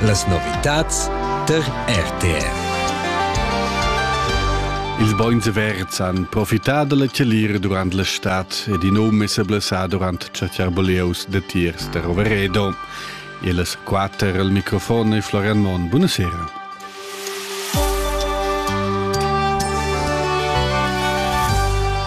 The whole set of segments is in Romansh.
Las novitads tar RTR. Ils bogns verds han profità da la chalir durant la stad ed in um è sa blessà durant chatscherboleus datiers da Roveredo. Ellas quatter al microfon è Florian Monn. Buonasera.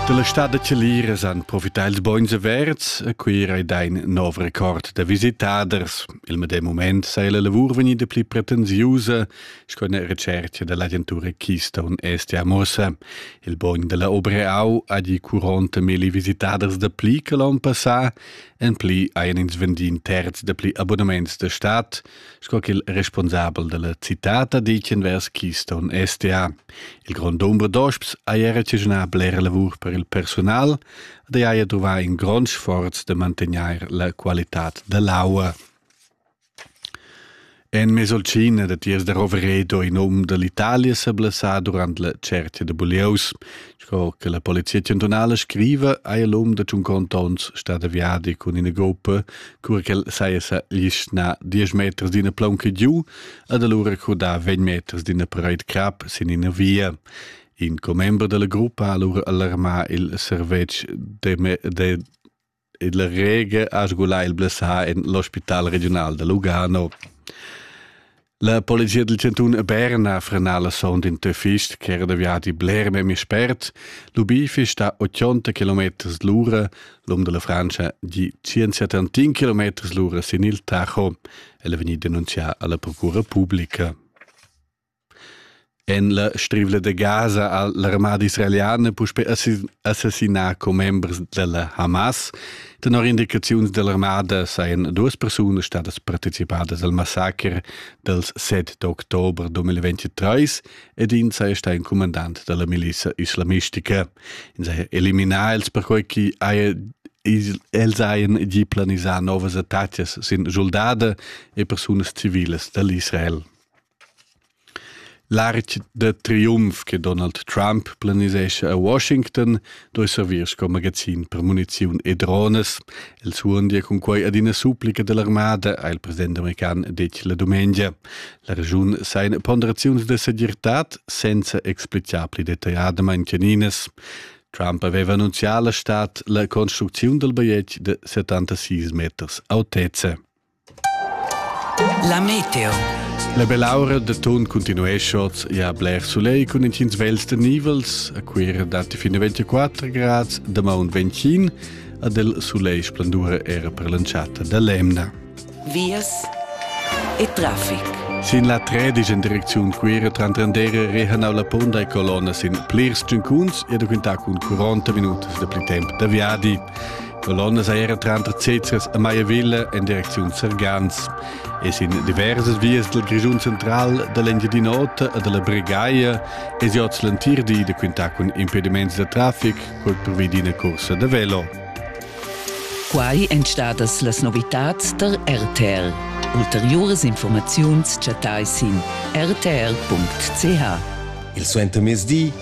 Dalla stad da Celiras han profità ils bogns averts a Cuira ed ein nov record da visitaders. Il medem moment sei la lavur vegnida pli pretensiusa, sco una recerca dall'agentura Keystone Est a Mossa. Il bogn dalla Obreau ha di 40.000 visitaders da pli che l'anno passà, en pli ein ins vendiu terz da pli abonnements da stadt, sco ch'il responsabel della citata dichen vers Keystone STA. Il grond dumber d'osps ha era cignà blera lavur per il personal, da haja truvà in grond sforz de mantegnair la qualitat dell'aua. En Mesolcina de tiers da Roveredo in um dell'Italia se blessà durant la cerchia de Bulieus, Sco che la polizia chantunala scriva, hai l'um da tun contons stat aviadi cun ina gruppa, cura ch'el saja sa lischnà 10 meters d'ina plaunca giu ed allura crudà 20 meters d'ina parade crap sin ina via. In commember della gruppa ha allura alarmà il servetsch de, de ed la rega ha sgulà il blessà en l'ospital regiunal da Lugano. La polizia del Cantun a Berna ha frenà la son d'in töfist ch'era da viadi bler memia spert. L'ubifi sta 80 km l'ura, l'um della Francia di 171 km l'ura sin il Tacho. El è vegnì denunzià alla procura pubblica. En la strivla da Gaza ha l'armada israeliana puspè assassinà commembers della Hamas. Tenor indicaziuns dell'armada sajan duas persunas stadas participadas al massaker dels 7 d'october 2023 ed in saja stà in comandant della milizia islamistica. In saja eliminà els perquai che haja els hajan gi planisà novas attacas sin soldada e persunas civilas dall'Israel. L'artg da triumf che Donald Trump planisescha a Washington doi servir sco magazin per muniziun e drones. El suondia cun quai ad ina supplica dell'armada, ha il president american detg la dumengia. La regiun sa in ponderaziuns de segirtad senza explicar pli detagliadamain caninas. Trump aveva annunzià alla stad la construcziun del bajetg de 76 meters autezza. La meteo. La bell'aura de ton continuescot ja bler soleil cun intgins vels de nivels, a quira datti fin a 24 grads, da maun 25, ad el soleil splendura era per l'entschatta da l'emna. Vias e traffic. Sin la tredisch in direcziun quira Trantandere rehanau la ponda e colonna sin plirs tschuncuns e da quintà cun 40 minutas de pli temp da viadi. Colonna seira tranter Cezers e Maiavilla en direcziun Sergans e sin diversas vias dal Grischun central da l'Engiadin'Ota e dalla Bregaia es jots l'entir di da quintar cun impediments da trafic col provi d'ina cursa da velo. Quai èn stadas las novitads tar RTL. Ulteriuras informaziuns chattai sin rtl.ch. Il suentermezdi